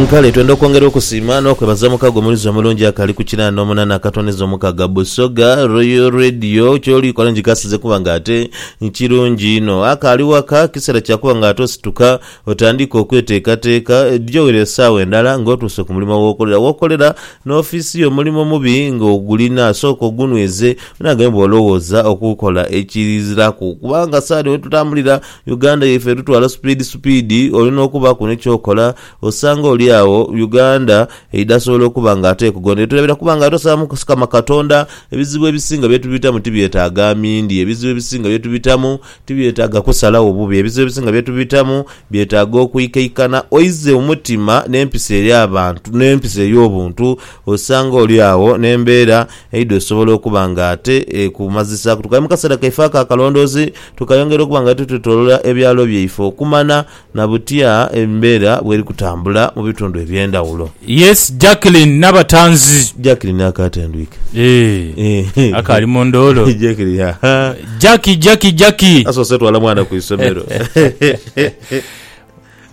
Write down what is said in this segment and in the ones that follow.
Kale twenda okwongera okusiima n'okwebaza omukago omuluzi omulungi akali ku kinaana omunana akatwaniza omukaga Busoga Royal Radio. Kyoli kola ngikasize kuba nga ate kirungi inho. Akaali waka, kiseera kya kuba nga ate osituka otandiika okweteekateeka. Dhiyowera esaawa endala ng'otuuse ku mulimo w'okolera. W'okolera n'ofiisi yo mulimo mubi ng'ogulina, sooka ogunweze onaghe bw'olowooza okukola ekiziraku. Kubanga saadi wetutambulira. Uganda yaife etutwala supiidi supiidi, oli n'okubaku ni ky'okola, osanga oli agho Uganda eidasobola okuba nga ate ekugondera. Etulabira kuba nga tusaba Mukama Katonda, ebizibu ebisinga bye tubitamu tibyetaaga amindi, ebizibu ebisinga bye tubitamu tibyetaaga kusalagho bubi, ebizibu ebisinga bye tubitamu byetaaga okwikaikana oize omutima n'empisa eri abantu, n'empisa eri obuntu, osanga oli agho n'embeera eidha osobola okuba nga ate ekumazisaaku. Tukali mu kaseera kaife ako akalondoozi. tukayongera okuba nga twetwetolola ebyalo byaife okumana na butya embeera bweri kutambula mu bitundu eby'endhawulo. Yes Jacqueline Nabatanzi. Jacqueline akaatendwike. Eeh akaali mu ndoolo. Jacqueline ahaa. Jackie Jackie Jackie. Asoose twala mwana ku isomero.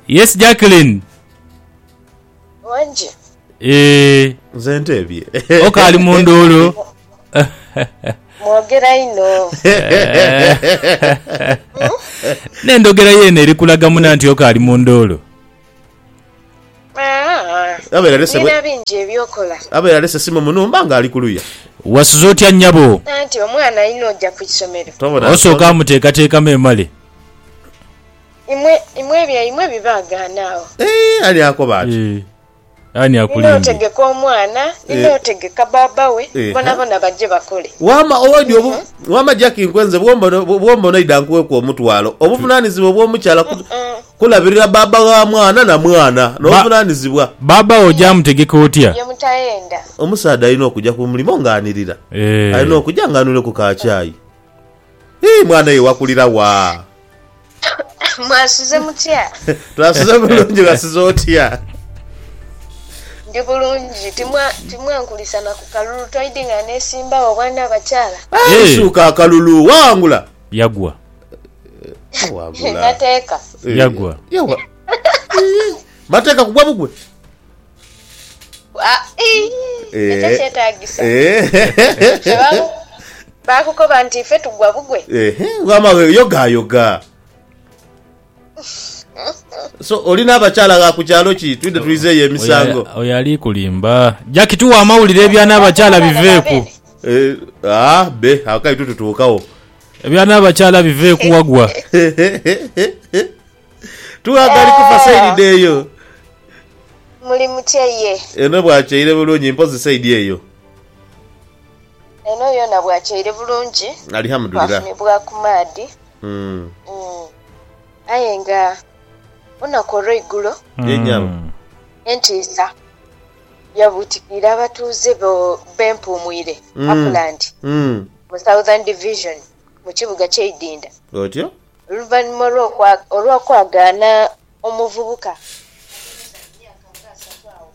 Yes Jacqueline. Wangi. Eeh. Nze nteebye. Oka ali mu nduulu. Mwogera inho. N'endhogera ye eno eri kulaga muna nti Oka ali mu nduulu. Abeera alese bwe. Nina bingi eby'okola. Abeera alese simu mu nhumba nga ali ku luya. Wasuze otya nyabo? Anti omwana alina oja ku isomero. Tobona nsonga. Osooka amuteekateekamu emale. Imwe, imwe ebyaimwe bibaagaana agho. Eeh, ali akoba ati. Eeh. Ani akulindidde? Ninootegeka omwana, ninootegeka bbaabba we, bonabona baje bakole. Waama Owedi obu, Waama Jackie nkwenze bw'omba onaidha nkuweku omutwalo. Obuvunaanizibwa obw'omukyala ku, kulabirira bbaabba wa mwana na mwana. N'obuvunaanizibwa. Bbaabba wo oja mutegeka otya? Bye mutayenda. Omusaadha alina okuja ku mulimo ng'anirira. Alina okuja ng'anwireku ka chai. Ii, Mwana ye wakulira wa? Mwasuze mutya? Twasuze bulungi, wasuze otya? Ndi bulungi, timwankulisa na ku kalulu toidi nga neesimbawo obwana abakyala? Isuuka akalulu, waghangula? Yagwa. Nateeka. Yagwa. Mateeka kugwa bugwe. Ekyo eh. kyetagisa bakukoba nti ife tugwa bugwe wama weyogayoga so oli n'abakyala gha ku kyalo ki twidde tulizeeyo emisango oyo ali kulimba jaki tuwa amawulire ebya n'abakyala biveeku eh, ah, be akai tututuukawo ebya n'abakyala biveeku wagwa Tughaga ali ku fasaidi eyo. Muli mutya ye? Eno bwakyaire bulungi mpozi saidi eyo. Eno yona bwakyaire bulungi. Alihamudulirah. Twafunibwa ku maadhi. Aye nga olunaku olweigulo. Yenyabo. Entiisa yabutikirira abatuuze be Mpuumwire Upland mu Southern Division mu kibuga kye Idinda. Otyo. Oluvanhuma olw'okwagaana omuvubuka okumala emyaka nga asatu agho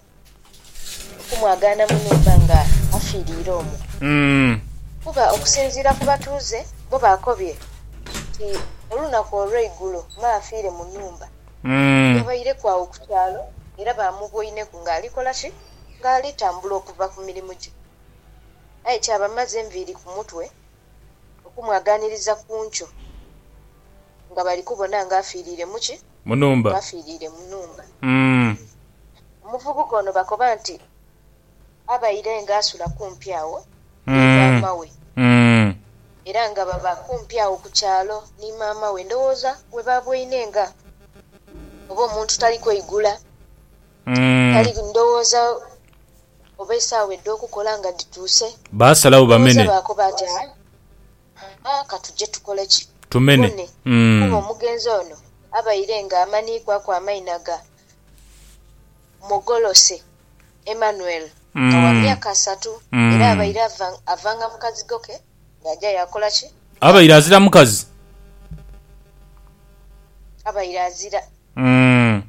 okumwagaana mu nhumba nga afiiriire omwo kuba okusinziira ku batuuze bo baakobye nti olunaku olw'eigulo me afiire mu nhumba yabaireku agho ku kyalo era baamuboineku ng'ali kola ki? Ng'ali tambula okuva ku mirimu gye aye kyabamaza enviiri ku mutwe okumwagaaniriza ku nkyo nga bali kubona nga afiiriire mu ki? Mu nhumba. Ng'afiiriire mu nhumba. Omuvubuka ono bakoba nti abaire ng'asula kumpi agho ni maama we era nga baba kumpi agho ku kyalo ni maama we, ndowooza we baaboine nga oba omuntu tali kweigula, tali ndowooza oba esaawa edh'okukola nga dhituuse. Baasalagho Booza bamene. baakoba nti, Ha, ha, ka tuje tukole ki? Tumene. Bone, kuba Mm. omugenzi ono abaire ng'amaniikwaku amaina ga Mogolose Emmanuel nga wa Mm. myaka asatu, era Mm. abaire ava, avanga mu kazigo ke ng'aja yaakola ki? Abaire Yaagho. azira mukazi. Abaire azira. Mm.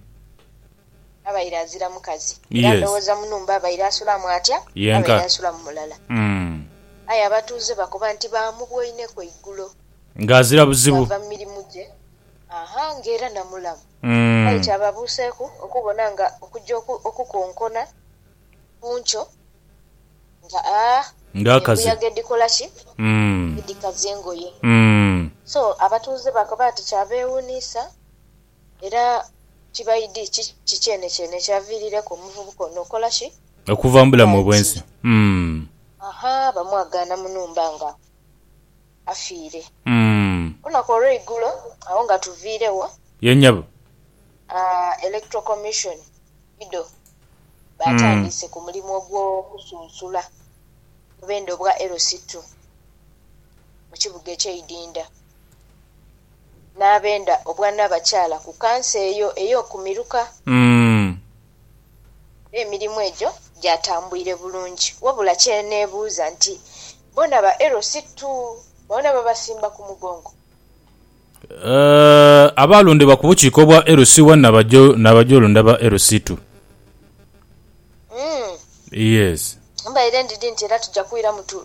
abaire azira mukazi, era ndhoghoza mu nhumba abaire asulamu atya? Abaire asulamu mulala. Aye abatuuze bakoba nti baamubwoineku eigulo, bwava mu mirimu gye, aa ng'era na mulamu. Aye kyababuuseeku okubona nga okuja okukonkona ku nkyo nga aa embuyaga edhikola ki? Edhikaza engoye. So abatuuze bakoba nti kyabeewuniisa. Era kibaidi kiki kyenekyene ekyaviirireku omuvubuka ono okola ki? Okuva mu bulamu obw'ensi. Umm. Aha, bamwagaana mu nhumba nga afiire. Umm. Olunaku olweigulo, agho nga tuviiregho. Ye nyabo. Aah, Electoral Commission ido baatandiise ku mulimu ogw'okusunsula mu bendhe obwa LC2 mu kibuga eky'eidinda. n'abenda obwanabakyala ku kanso eyo ey'oku miruka. Umm. Era emirimu egyo gyatambwire bulungi. Wabula kye neebuuza nti, bona ba LC tu boona babasimba ku mugongo? Eeh, abaalondebwa ku bukiiko bwa LC One na bajo na bajolonda ba LC Two. Umm. Yes. Mbaire ndidhi nti era tuja kwiramu tu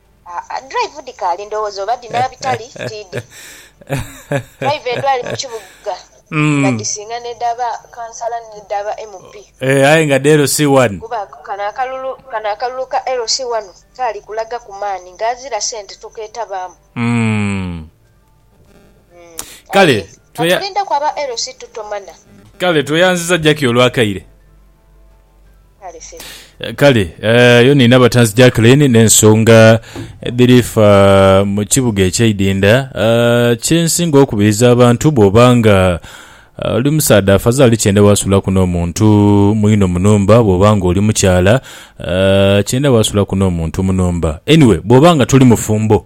Aa drive dhikaali ndowooza oba dhina bitali tiidhi drive edhali mu kibuga nga dhisinga n'edha ba kansala ni dha ba MP kuba kano akalulu kano akalulu ka LC1 kaali kulaga ku maani nga azira sente tokeetabaamu. Kale tweyanziza Jackie olwa kaire. Kale eyo nina abatanzi Jacqueline n'ensonga edhiri fa mu kibuga ekyeidinda. Kye nsinga okubiriza abantu bw'oba nga oli musaadha afazali kyenda waasulaku n'omuntu mwino mu nhumba, bw'oba nga oli mukyala kyenda waasulaku n'omuntu mu nhumba. Anyway bw'oba nga toli mufumbo.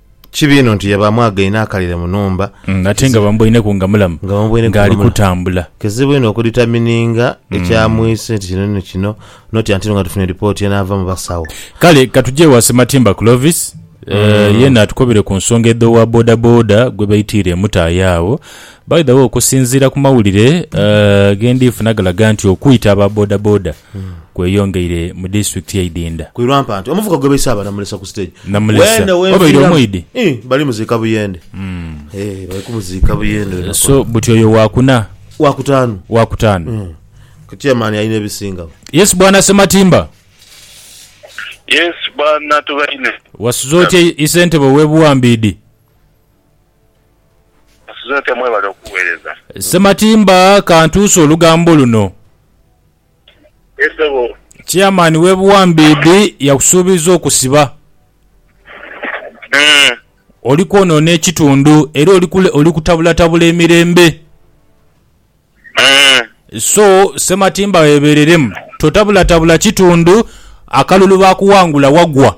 Kibi inho nti yabaamwagaine akalire mu nhumba. Mm, ate nga bamuboineku nga mulamu Nga bamuboineku nga ng'ali mulamu. kutambula. Kizibu inho okuditamininga ekyamwise nti kino ni kino, noti anti nga tufunye lipooti enaava mu basawo. Kale katuje ewa Sematimba Clovis eh, yeena atukobere ku nsonga edh'owa bodaboda gwe baitiire emutaaya agho. By the way, okusinziira ku mawulire eh, ge ndhi funa galaga nti okwita aba bodaboda kweyongeire mu disitulikiti y'e Idinda. Ku Irwampa nti omuvuka gwe baise abalamulisa ku siteegi Namulesa weene oba obeire w'enfiiramu omwidhi? ii bali muziika Buyende ee bali kumuziika Buyende lunaku So olwo. buti oyo waakuna, Waakutaanu waakutaanu. ku chairman alina ebisingagho. Yes bwana Ssematimba. Yes bwana Tubaine. Wasuze otya isentebe ow'e Buwambiidi? Musuze otya mwebale okuwereza. Ssematimba kantuuse olugambo luno. Yes sebo. Chairman we Buwambiidhi yakusuubiza okusiba. Mm. Oli kwonoona ekitundu era oli kule oli kutabulatabula emirembe. Mm. So Ssematimba weebereremu totabulatabula kitundu akalulu baakuwangula wagwa.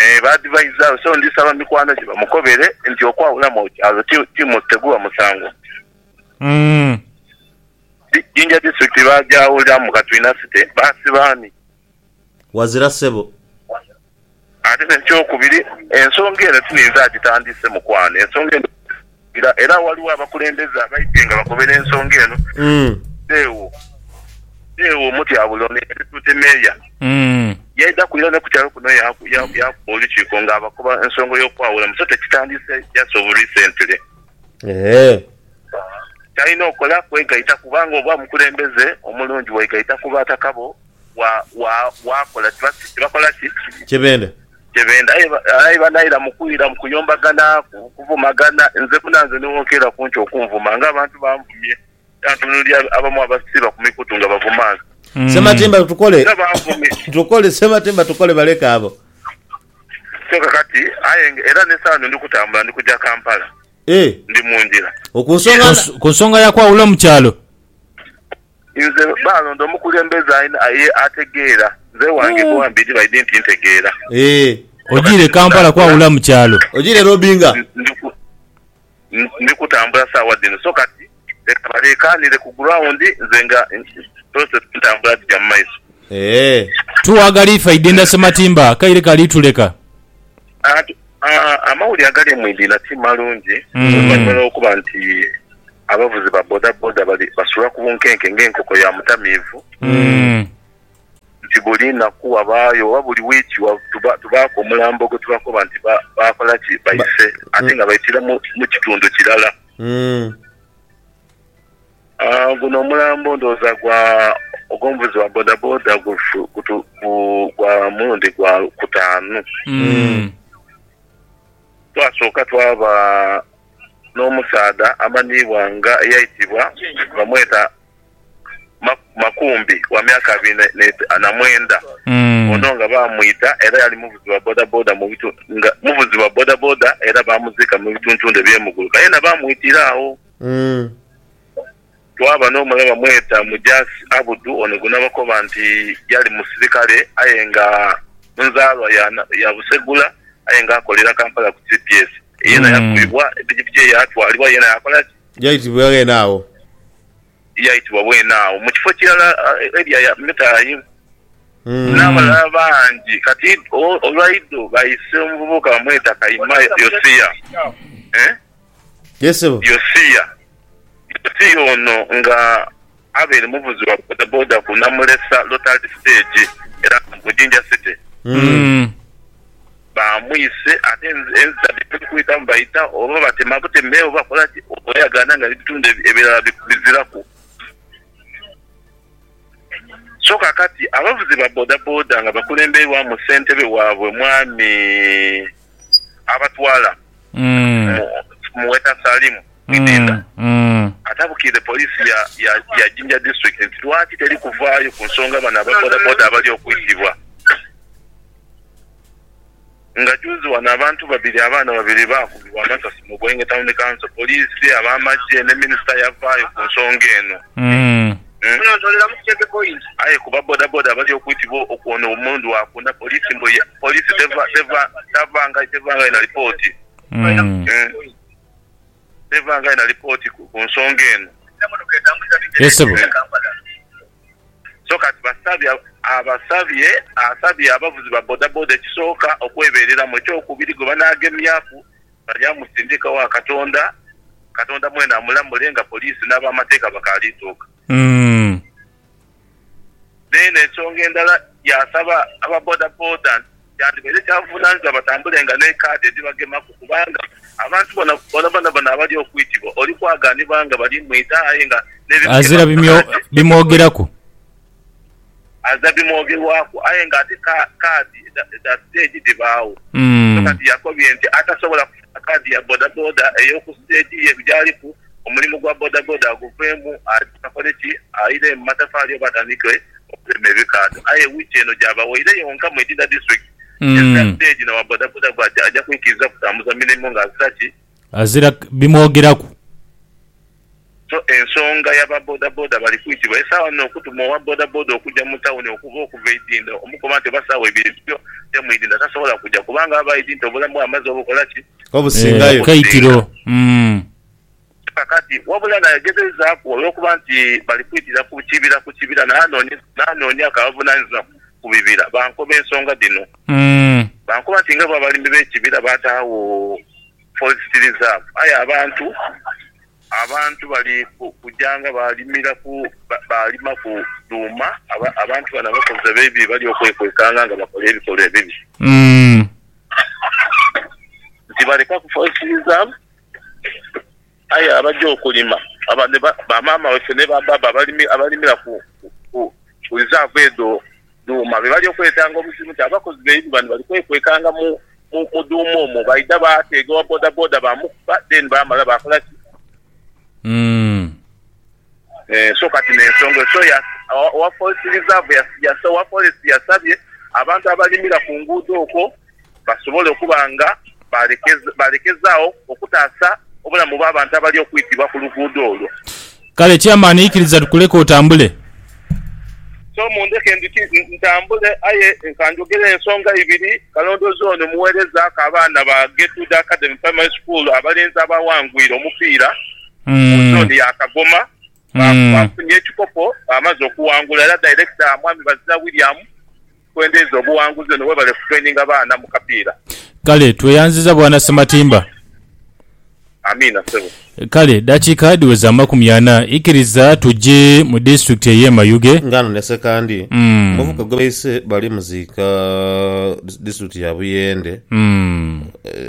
Ee, baadivaiza we. So ndisaba mikwano gye bamukobere nti okwawulamu okyalo ti, ti, teguba musango. Umm. Di, Jinja District baagyawulira mu Katwina City. Baasiba ani? Wazira ssebo. Ate n'ekyokubiri, ensonga eno ti ninze agitandiise, mukwano. Ensonga eno. Era era waliwo abakulembeze abaidhe nga bakobera ensonga eno beewo beewo omutyabule ono eyali Duty Mayor yaidhaku era ni ku kyalo kuno yaku yaku yakuba olukiiko nga abakoba ensonga y'okwawulamu so tekitandiise just of recently. Ky'alina okola kwegaita kubanga oba omukulembeze omulungi wegaita ku bataka bo wa wa wakola tiba tibakola ki? Kyebenda. kye benda aye banaira mu kwira mu kuyombagana, ku kuvumagana, nze munanze nigho nkeera kunki okunvuma nga abantu banvumye era ntunulira abamu abasiiba ku mikutu nga bavuma nze. Ssematimba tukole Era banvumye tukole Ssematimba tukole baleke abo. kyoka kati aye nga era n'esawa eno ndi kutambula ndi kuja Kampala. Eeh. Ndi mu ngira. Ku nsonga na. Ku nsonga ya kwawula mu kyalo. Nze baalonda omukulembeze alina aye ategeera. Nze wange boa mbidi baidi nti ntegeera. Eeh. Ojiire Kampala kwawula mu kyalo. Ojiire Robinga. Ndi ku. Ndi kutambula saawa dhino so kati. Leka baleekaanire ku ground nze nga process entambula dhija mu maiso. Eeh. Tuwagala ife Aidinda Ssematimba akaire kali tuleka. Ati amawulire agali mu Idinda ti malungi oluvannyuma lw'okuba nti abavuzi ba bodaboda bali basula ku bunkenke ng'enkoko ya mutamiivu nti buli naku wabaayo oba buli wiiki tubaaku omulambo gwe tubakoba nti baakola ki baise ate nga baitira mu kitundu kirala. Guno omulambo ndhooza gwa ogw'omuvuzi wa bodaboda gwa mulundi gwa kutaanu. Twasooka twaba n'omusaadha amanhiibwa nga eyaitibwa bamweta... Makumbi wa myaka abiri na mwenda ono nga bamwita era yali muvuzi wa bodaboda nga muvuzi wa bodaboda era baamuziika mu bituntundu eby'e Muguluka yena baamwitira agho. Twaba n'omulala bamweta Mujaasi Abudu ono gwe nabakoba nti yali musirikale aye nga nzaalwa ya Busegula aye nga akolera Kampala ku cps yena yakubibwa pikipiki ye yaatwalibwa yena yaakola ki? Yaitibwa ghene agho. Yaitibwa bwene agho mu kifo kirala Eria ya Metayimu, n'abalala bangi. Kati olwaido baise omuvubuka bamweta kaima Yosia. Yosia ono nga Abel muvuzi wa bodaboda ku Namulesa Lottery Stage era nga mu Jinja City. Bamwise ate enziza dhe bali kwitamu baita oba batema buteme oba bakola ki oba yagaana nga n'ebitundhu ebirala biziraku. So kaakati abavuzi ba bodaboda nga bakulembeirwamu ssentebe waabwe Mwami. abatwala mu mu Weta Salimu Idinda atabukiire poliisi ya ya Jinja District nti lwaki teri kuvaayo ku nsonga bano aba bodaboda abali okwitibwa nga juuzi wano abantu babiri abaana babiri baakubibwa amasasi mu Bwenge Town Council, poliisi, ab'amagye ne minisita yavaayo ku nsonga eno. Munontoleramu ku Kyepe Point. Aye ku ba bodaboda abali okwitibwa okwona omulundi wa kuna, poliisi mbu ye poliisi tevangayo na lipooti tevangayo na lipooti ku nsonga eno. So kati basabye abasabye asabye abavuzi ba bodaboda ekisooka okwebereramu, ekyokubiri gwebanagemyaku Baja musindika wa Katonda, Katonda mwene amulamule nga poliisi n'abamateeka bakaali tuuka. N'eno ensonga endala yaasaba aba bodaboda nti kyandibaire kya buvunaanyizibwa batambulenga ne kaadi edhibagemaku kubanga abantu bona bonabona bona abali okwitibwa oli kwaganibwa nga bali mwita aye nga n'ebimugemaku bikaali. aza bimwogerwaku aye nga ate kaadi dha siteegi dhibaagho. So kati yakobye nti atasobola kufuna kaadi ya bodaboda ey'oku siteegi ye gy'aliku, omulimu gwa bodaboda aguveemu agye akole ki? Aire mu matafaali oba atandike okulema ebikaadho. Aye wiiki eno gyabaweire yonka mu Itinda disiturikiti, ezira siteegi n'owa bodaboda gwe aja kwikiriza kutambuza mirimo ng'azira ki? Azira bimwogeraku. So ensonga ya ba bodaboda bali kwitibwa esaawa dhino okutuma owa bodaboda okuja mu tawuni okuva okuva e Idinda omukoba nti oba saawa ibiri byo je mu Idinda tasobola kuja kubanga aba Idinta obulamu bwe amaze obukola ki? Obusingayo. Obukaitiro. Umm. Kakati wabula nayegezeizaaku olwokuba nti bali kwitira ku kibira ku kibira n'anoonyaku abavunanizibwa ku bibira bankoba ensonga dhino. Umm. Bankoba nti nga bo abalimi b'ekibira baataagho. Forest Reserve, aye abantu abantu bali kuja nga balimiraku balimaku dhuuma, abantu bano abakozi ab'ebibi bali okwekwekanga nga bakola ebikolwa ebibi nti balekaku Forest Reserve. Aye abaja okulima, abandhi ba maama waife ni ba baaba abalimira ku lizaavu edho dhuuma, be bali okweetanga obuzibu nti abakozi baibwe bano bali kwekwekanga mu dhuuma omwo. Baidha baateega owa bodaboda baamukuba then baamala baakola ki? So kati n'ensonga eyo. So owa forest reserve, owa forest yasabye abantu abalimira ku nguudo okwo. basobole okuba nga balekezaagho okutaasa obulamu bw'abantu abali okwitibwa ku luguudo olwo. Kale Chairman ikiriza tukuleke otambule. So mundheke ndhuki ntambule aye kanjogere ensonga ibiri, Kalondoozi ono mugheereza k'abaana ba Getrude Academy Primary School abalenzi abaawangwire omupiira mu zone ya Kagoma baafunye ekikopo baamaze okuwangula era Director Mwami Bazira William, Twendeza obuwanguzi eno webale ku traininga baana mu kapiira. Kale tweyanziza bwana Ssematimba. Amiina ssebo. Kale dakiika dhiweza amakumi ana ikiriza tuje mu disitulikiti eye Mayuge. Ng'ano ne Sekandi, omuvubuka gwe baise bali muziika mu disitulikiti ya Buyende,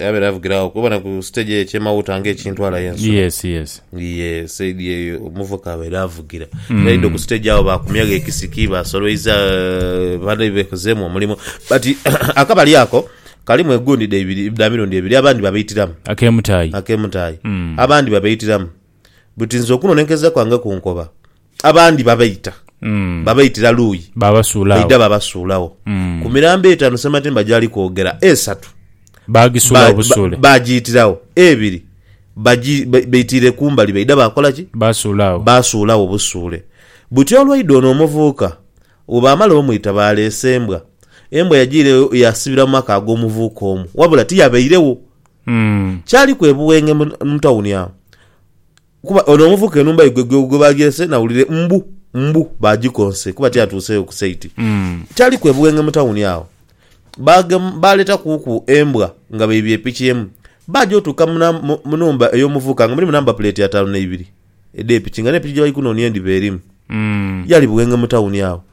yabeera avugira agho kubona ku siteegi eyo ekye Mawuuta ng'ekintwala aye ensula. Ni ye saidi eyo omuvuka abaire avugira. Mm. Yaidha ku stage agho baakumyagho ekisiki, baasolwaiza eh, bane bekozeemu omulimu. But akabali ako kalimu egundi dha ibiri, dha mirundi ebiri, abandi babaitiramu Ak'emutaayi. ak'emutaayi, Mm. abandi babaitiramu. But nze okunonenkereza kwange ku nkoba, Abandi babaita, Mm. babaitira luuyi, Baabasuula baidha agho. babasuulagho. Mm. Ku mirambo etaanu Ssematimba gy'ali kwogera, esatu Baagisuula ba- obusuule. ba- baagiyitiragho, ebiri bagi- ba- baitiire kumbali baidha baakola ki? Baasuula agho. baasuulawo obusuule buti olwaidha ono omuvubuka bwebaamala omwita baaleese embwa embwa yagiira eyo yaasibira mu maka ag'omuvubuka omu wabula tiyabairewo Mm. kyali kwebuwenge mu mu tawuni awo Kuba ono omuvuka enhumba ye gwe gwe baagyeese nawulire mbu, mbu baagikonse kuba tiyatuuseeyo ku saiti. Kyaliku e Buwenge mu tawuni agho, baagema baaleetakuku embwa nga baibye epiki emu. Baaja otuuka mu nam, mu, mu nhumba ey'omuvuka nga mulimu namba puleeti ataanu na ibiri edh'epiki nga n'epiki gye bali kunoonia endhiba erimu. Yali Buwenge mu tawuni agho.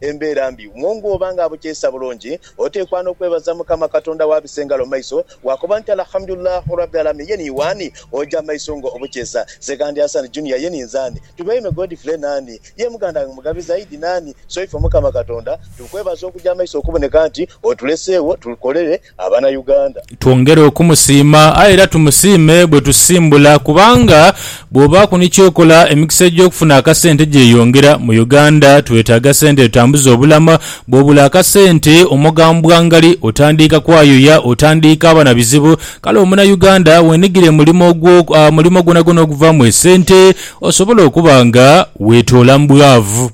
Embeera mbi wo ng'oba ng'abukyayisa bulungi, oteekwa n'okwebaza Mukama Katonda wo abise engalo mu maiso, waakoba nti, Alhamdu Lillah Rabbi Alamin, ye ni wani oja maiso nga obukyesa? Segandi Hassan Junior, ye ni nzani? Tubaime Godfrey, nani ye muganda ghange Mugabi Zaidi? Nani? So ife Mukama Katonda tukwebaza okuja maiso okuboneka nti otuleseegho tukolere abana Uganda. Twongere okumusiima aye era tumusiime bwe tusimbula kubanga bw'obaaku ni ky'okola emikisa egy'okufuna akasente gyeyongera. Mu Uganda twetaaga sente etutambuza obulamu. Bw'obula akasente omoga mbwangali, otandiika kwayoya, otandiika ba na bizibu. Kale omuna Uganda weenigire mulimo gwo, mulimo gwonagwona oguvaamu esente osobola okuba nga weetoola mu bwavu.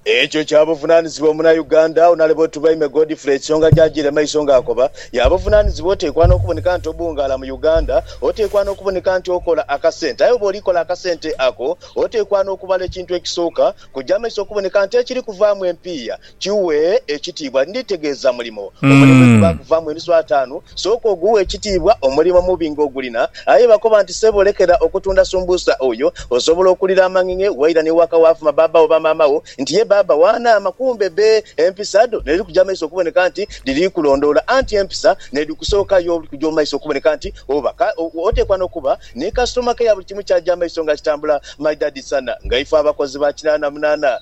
Ekyo kya buvunaanizibwa omunauganda onale Botubaime Godfrey ensonga gy'ajiire mu maiso ng'akoba, ya buvunaanizibwa oteekwa n'okuboneka nti obuungaala mu Uganda, oteekwa n'okuboneka nti okola akasente aye bw'oli kola akasente ako oteekwa n'okubala ekintu ekisooka kujja maiso okuboneka nti ekiri kuvaamu empiiya kiwe ekitiibwa. Nditegeeza mulimo. Omulimu egubaaku vaamu enusu ataanu, sooka oguwe ekitiibwa omulimo omubi ng'ogulina. Aye bakoba nti, Sebo lekera okutunda sumbusa oyo, osobola okulira amang'eng'e waira ni waka waafuma baaba oba maama wo nti ye baaba wa naama. Kumbe be empisa dho n'edhi kuja mu maiso okuboneka nti dhiri kulondoola. Anti empisa n'edhi kusooka yo buli kuja mu maiso okuboneka nti oba ka. Oteekwa n'okuba ni kasitoma keya buli kimu kyaja mu maiso nga kitambula. My Daddy Sana nga ife abakozi ba kinaana munaana.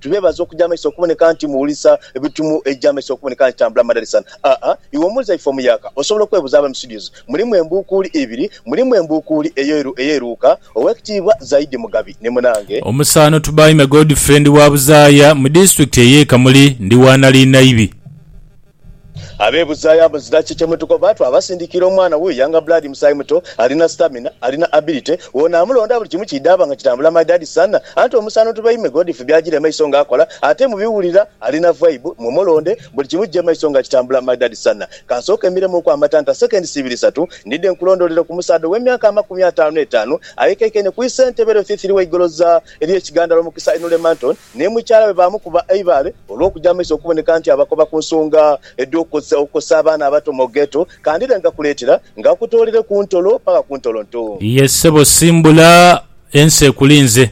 Tubeebaza okuja maiso okuboneka nti muwulisa ebitumu eija maiso okuboneka nti tambula madalisan a a Iwe omuwuliza ife omuyaaka osobola okwebuuza Abaami Studios mulimu embuukuuli ibiri Mulimu embuukuuli eyo eru ey'eruuka Ow'ekitiibwa Zaidi Mugabi ni munange Omusaano Tubaime Godfrey ndi wa Buzaaya mu disitulikiti ey'e Kamuli. Ndi wa Naliinaibi. Abeebuzaayo abazira ki kye mutukoba? Twabasindiikira omwana wuyo Younger Blood, musaayi muto, alina stamina, alina ability, woono amulonda buli kimu kidhaaba nga kitambula maidadi sana. Anti omusaano tubaime Godfrey byajira emaiso nga akola ate mubiwulira alina vibe. Mwe mulonde buli kimu kije maiso nga kitambula maidadi sana. Kansooke mmiremuuku amatanta seconds ibiri isatu ndidhe nkulondoolere ku musaadha ow'emyaka amakumi ataanu n'etaanu ayekaikaine ku isentebe lwe Thithiri w'eigoloza ly'e Kigandala omukisa Inule Manton. ni mukyala we baamukuba eibaale olw'okuja mu maiso okuboneka nti abakoba ku nsonga edh'okukozesa obukozesa abaana abato mu Ghetto kandhire nga kuleetera nga akutoolere ku ntolo paka ku ntolonto. Ye ssebo simbula, ensi ekulinze.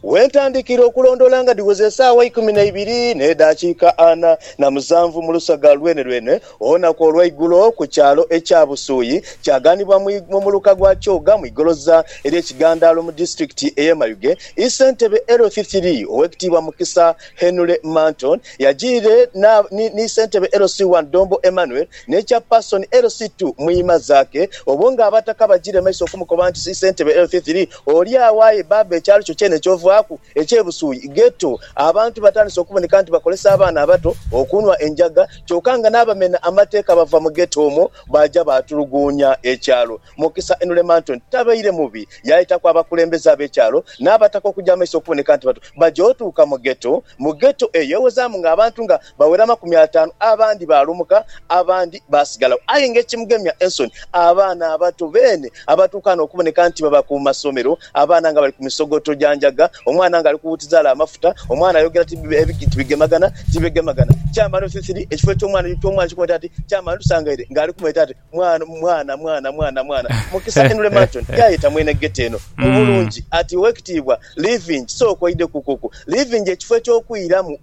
We ntandikira okulondoola nga dhiweze esaawa ikumi na ibiri n'edaakiika ana na musanvu mu lusaga lwenelwene Olunaku olweigulo ku kyalo ekya Busuuyi kyaganibwa mu muluka gwa Kyoga mu igoloza erye Kigandaalo mu disitulikiti eye Mayuge ii Ssentebe LC3 Owekitiibwa Mukisa Henry Manton yajiire ni Ssentebe LC1 Ddombo Emmanuel ne Chapason LC2 Muyima Zaake obwo nga abataka bajire maiso okumukoba nti Ssentebe LC3 oli agho aye baaba ekyalo kyo kyene kyovaaku Eky'e Busuuyi, Ghetto, Abantu batandise okuboneka nti bakolesa abaana abato okunhwa enjaga kyoka nga n'abamena amateeka bava mu Ghetto omwo baaja baatuluguunya ekyalo. Mukisa Enulemanton tabaire mubi, yaayitaku abakulembeze ab'ekyalo n'abataka okugya amaiso okuboneka nti batu. Baja otuuka mu Ghetto. Mu Ghetto eyo ewozaamu ng'abantu nga bawera amakumi ataanu, abandi baalumuka, abandi baasigalagho. Aye ng'ekimugemya ensoni, abaana abato beene abatuuka n'okuboneka nti baba ku masomero, abaana nga bali ku misogoto gya njaga, omwana ng'ali kuwuutiza ale amafuta, omwana ayogera ti bigemagana ti bigemagana, kyamala othithiri ekifo eky'omwana eky'omwana eky'okumweta ati, kyamala otusangaire ng'ali kumweta ati, Mwana, mwana, mwana, mwana, mwana. Mukisa Henry Marton yaayeta mwene ghetto eno mu bulungi ati, Ow'ekitiibwa Living, sooka oidhe ku kuku Living ekifo eky'okwiramu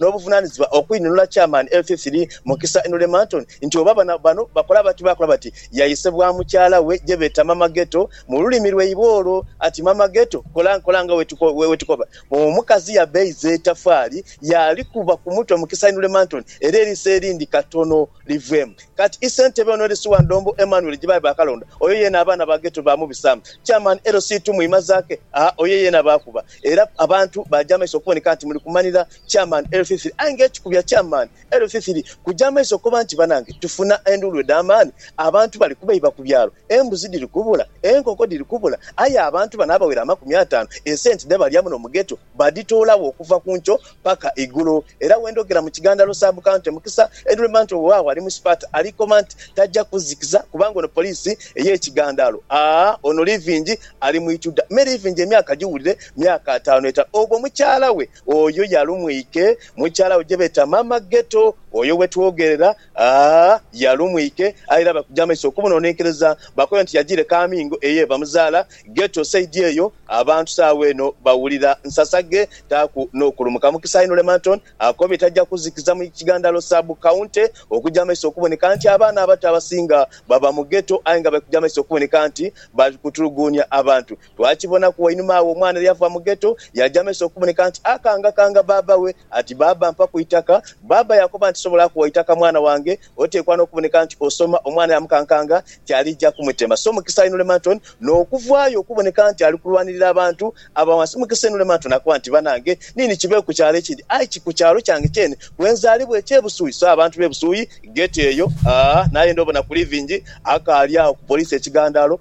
n'obuvunaanizibwa okwinunula Chairman Elthithiri Mukisa Henry Marton nti oba bano bakola bati baakola bati. Yayisebwa mukyala we gye beeta Mama Ghetto mu lulimi lwaibwe olwo ati, Mama Ghetto, kola, kola nga wetukoba. Omukazi yabeeiza etafaali yaalikuba ku mutwe Mukisa Henry Marton era eriiso erindi katono. liveemu kati i Ssentebe ono LC wa Ndombo Emmanuel Jibayi baakalonda oyo yeena abaana ba Ghetto baamubisaamu, Chairman LC Tumwima Zaake aa oyo yeena baakuba era abantu baaja amaiso okuboneka nti muli kumanhira Chairman LC3 aye nga ekikubya Chairman LC3 kuja amaiso koba nti banange tufuna enduulu edh'amaani abantu bali kubeiba ku byalo Embuzi dhiri kubula, enkoko dhiri kubula aye abantu bano abawera amakumi ataanu esenti dhe balya muno mu Ghetto badhitoolagho okuva ku nkyo paka eigulo era wendhogera mu kighandhalo Sub County Mukisa Edwin Manto wewawo ali mu sipaati ali koma nti taja kuzikiza kubanga ono poliisi eye kighandhalo aa ono Living ali mu ituda me Living emyaka giwulire myaka ataanu eta ogwo mukyala we oyo yalumwike mukyala we gyebeeta Mama Ghetto oyo wetwogerera A Yali omwike aye era bakuja amaiso okumwononenkereza bakobe nti yajiire Kamingo eye bamuzaala Ghetto side eyo abantu saawa eno bawulira nsasaghe taaku nokulumuka mukisa inho Lemanton akobye taja kuzikiza mu Kigandalo Sub County okuja amaiso okuboneka nti abaana abato abasinga baba mu Ghetto aye nga balikuja amaiso okuboneka nti balikutuluguunia abantu Twakibonaku wainuma agho omwana eryava mu Ghetto yaja maiso okuboneka nti akangakanga baaba we ati, Baaba mpaku eitaka. Baaba yakoba nti, Sisobola kugha itaka mwana wange, oteekwa n'okuboneka nti osoma. Omwana yamukankanga nti alija kumutema. So Mukisa Inulemanton n'okuvaayo okuboneka nti ali kulwanirira abantu aba wansi. Mukisa Inulemanton akoba nti, Banange nini kibe ku kyalo ekindi aye ki ku kyalo kyange kyene kwe nzaalibwa eky'e Busui. So abantu b'e Busui, Ghetto eyo, aah, nayenda obona ku livingi akaali agho ku poliisi ekigandaalo.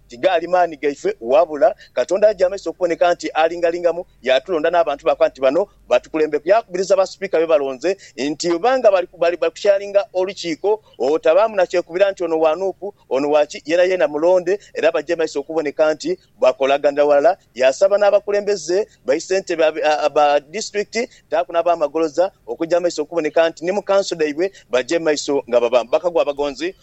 Tigaali maani gaife, wabula Katonda aja amaiso okuboneka nti alingalingamu, yaatulonda n'abantu baakola nti bano batukulembeku. Yaakubiriza basipiika be balonze nti oba nga bali kukyalinga olukiiko, otabaamu na kyekubira nti ono wa nup, ono wa ki, yeenayeena mulonde era baje maiso okuboneka nti bakolaganira walala. Yaasaba n'abakulembeze bai ssentebe ba disitulikiti dhaaku n'abaamagoloza okuja amaiso okuboneka nti ni mu kanso dhaibwe baje maiso nga baba bakagwa abagonzi.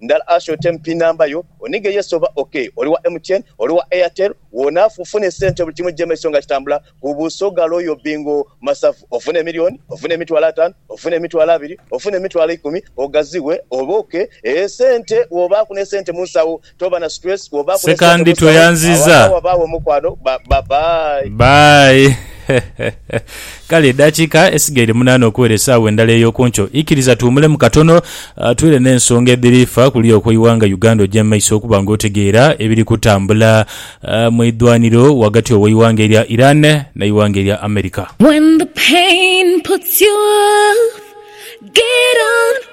Ndala asha otemu pin number yo onige yes oba ok oli wa MTN oli wa Airtel wona afu fune sente buli kimu jemaiso nga kitambula ku busoga loyo bingo masavu ofune emilioni ofune emitwalo atanu ofune emitwalo abiri ofune emitwalo ikumi ogazighe obe ok eeh sente wobaku ne sente munsawo toba na stress wobaku ne sente Sekandi munsawo awo tweyanziza. agha wabagho omukwano ba ba bye. Bye. Kale edaakiika esigaire munaana okuwera esaawa endala ey'oku nkyo, ikiriza tuwumulemu katono twire n'ensonga edhiri fa kuliya okw'eighanga Uganda oje mu maiso okuba nga otegeera ebiri kutambula mu idhwaniro ghagati ow'eighanga erya Iran n'eighanga erya America.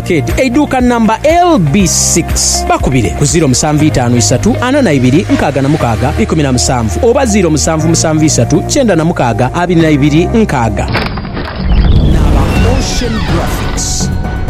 Arcade, eiduuka namba LB six, bakubire ku ziiro musanvu itaanu isatu ana na ibiri nkaaga na mukaaga ikumi na musanvu oba ziiro musanvu musanvu isatu kyenda na mukaaga abiri na ibiri nkaaga. N'aba Ocean Graphics.